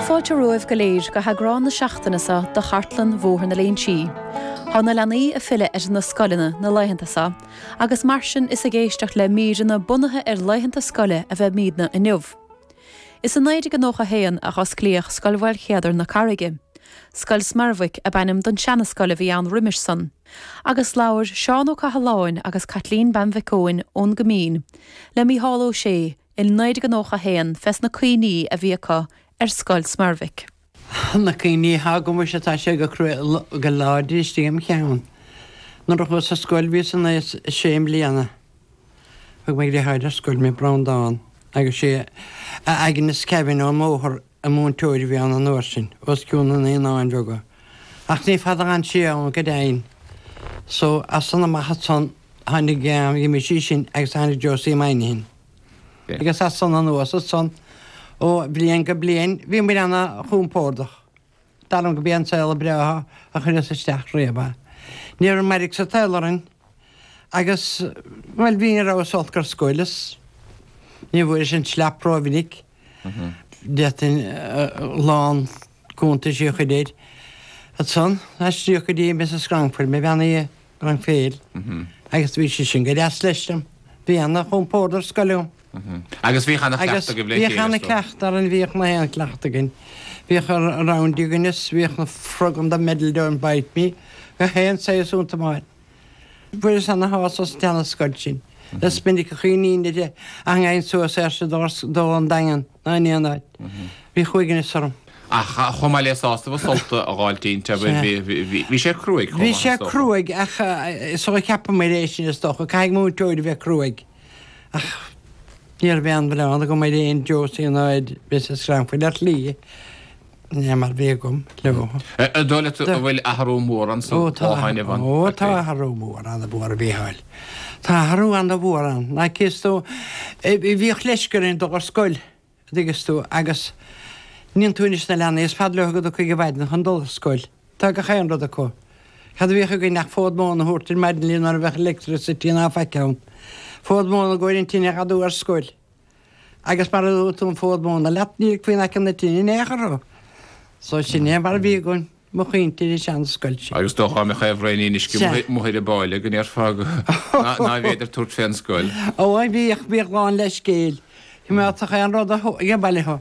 Fáilte romhaibh go léir go heagrán na seachtaine so do Chartlann Bhóthar na Léinsí. Tá na leanaí a' filleadh ar na scoileanna na laethanta so agus mar sin is ag éisteacht le míreanna bunaithe ar laethanta scoile a bheimidne inniu. Is i 1991 a hosclaíodh Scoil Mhaolchéadair na Carraige. Scoil Smerwick ab ainm don seana-scoil a bhí ann roimis san. Agus labhair Seán Ó Cathaláin agus Caitlín Bean Mhic Eoin ón gCoimín le Mícheál Ó Sé, I 1991 fés na cuimhní a bhí acu ar Scoil Smerwick. Na cuimhní athá agam fés atá sé go cruaidh go láidir istigh im cheann. Nuair a chuas ar scoil bhíos in aos a sé mbliana. Thug mo dhriotháir ar scoil mé Breandán agus sé Aignéas Kevane ón mbóthar an múinteoir a bhí ann an uair sin, os cionn na Naíonáin Bheaga, ach ní fada a dh'fhan sé ann go deimhin. So, as san amach ansan tháinig Mrs Sheehan agus tháinig Josie Moynihan. Agus as san anuas ansan, ó bhliain go bliain bhíomair ana-chompordach. Dar liom gob é an saol ba bhreátha a chuireas isteach riamh é. Ní raibh mairg sa tsaol orainn agus bhuel ní rabhas olc ar scoil is ní bhfuaireas an slap ró mhinic. D'fhéadfainn a lán cuntaisí a chur air. Ansan, aistríodh go dtí Mrs. Cranford mé bean a' gan phéill. Agus bhí sé sin go deas leis linn. Bhí ana chompórd ar scoil agam. Agus bhíodh ana chleachta agaibh le chéile. Agus bhíodh ana chleachta againn, bhíodh gach aon chleachta againn. Bhíodh rounders againn is bhíodh na frog in the middle don't bite me, gach aon saghas iontu mar. Fuaireas ana shásamh as an tseana scoil sin. Is minic a chuimhním ag gabháil suas ansan dul don Daingean. Nó in aon áit. Bhí uaigneas orm. Ach chomh maith le sásamh agus sult a fháil inti. Bhí sé cruaidh chomh maith is dócha. Bhí sé cruaidh ach is dócha ceapaim é sin is dócha. Caithfidh múinteoir a bheith cruaidh. Ach ní raibh aon mhilleán agam ar aon Josie ná ar Mrs. Cranford ar shlí. Ní mar bhí agam leo. An dóigh leat a bhfuil athrú mór anso ó shin, Ivan? Ó tá athrú mór ana mhór, a Mhícheáil. Tá athrú ana mhór ann. Ná tuigeann tú, bhíodh leisce orainn dul ar scoil, an dtuigeann tú, agus chíonn tú anois na leanaí, is fada leo go dtiocfaidh an mhaidin chun dul ar scoil. Tá gach aon rud acu. Cad a bhíodh againn ach fód móna a thabhairt ar maidin linn mar ní bheadh electricity ná faic ann. Fód móna i gcomhair an tine a dh'adú ar scoil. agus mara dtabharfá an fód móna leat ní ligfí in aice na tine in aon chor thú. So sin é mar a bhí againn, mo chuimhní sa seana scoil sin. Agus dá mbeadh aon bhraon uisce mo thuir a b'áille go ndéarfá go ná bhféidir tabhairt fé an scoil. Ó a bhíodh, bhíodh lán le scéil. Thiomálfadh aon rud a gheibheá leo.